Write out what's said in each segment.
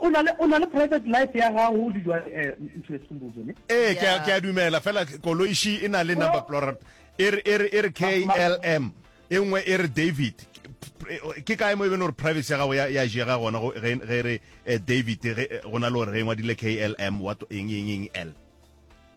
o na le private life ya gago o didwa eh, ntho e sumbuzo ne ee ke a- ke a dumela fela koloishi e na le number plora e re- e re- e re klm e nngwe e re david Ke- ke kae mo e bene gore privacy ya gago ya ya jega gona go- ge ge re eh, david ge- eh, go na le gore ge e ngwadile klm what eng eng eng l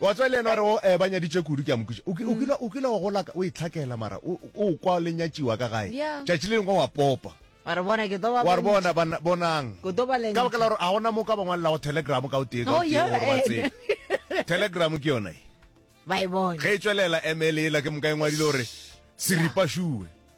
Wa tswa le yena wa re o ba nyaditše kudu ke a mo kwiša. O ki, o kile, o kile wa gola ka, o e tlhakela mara o, o kwa le nyatšiwa ka gae. Ya. Tšatši le lengwe wa popa. Wa re bona ke tlo ba Wa re bona, bontša. bana, bonang. Ke tlo ba Ka baka la lentša. gore ga gona mo ka ba ngwalelago telegram ka o tee ka o Oh, tee ya, gore ba eh. tsebe. Telegram ke yona e. Ba e bona. Ge e tšwelela ML yela ke moka e ngwadile gore seripa šue.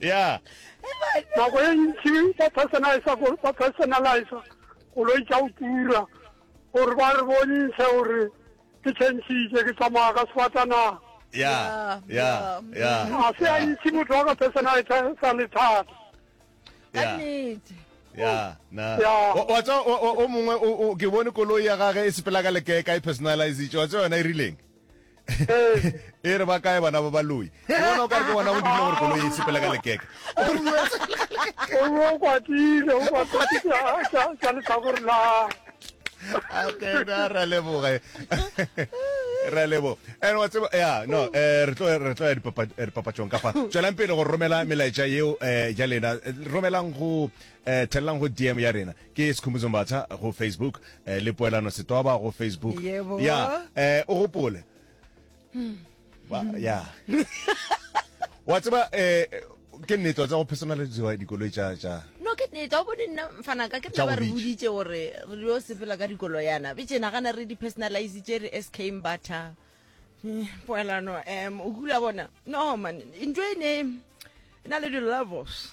ya nako e ntši ba personalisa ba personalisa koloi tša go tura gore ba re bontšhe gore ke tšhentšhitše ke tsamaya ka sefatanaga ya ya ya ga se a ntši motho wa ka personalisa sa lethata ya na wa tsa o mongwe ke bone koloi ya gage e sepela ka lekeka e personalizitše wa tsa yona e rileng e re ba kae bana ba baloi ke bona o ka re ke bona go dirile gore koloi e sepele ka lekeke o be o kwatile o kwatile ka letlhakore la ra leboge ra lebo and wa tseba ya no eh re tlo re tlo ya dipapatšong eh, kafa tswelang pele go romela melaetša yeo eh ja lena romelang go eh tellang go dm ya rena Ke Sikhumbuzo Mbatha go Facebook eh, le Poelano Setoba go Facebook. Yebo. Ya, eh, o gopole. Ba, ya. Wa tseba eh, ke nnete wa tseba go personaliziwa dikoloi tša tša no ke nnete o bone nna fanaka ke Tša nna ba re bobedi. boditše gore re yo sepela ka dikolo yana be tše nagana re di-personalize tše re sk mbatha Eh, poelano um o kula bona no man ntho e ne e na le di-levels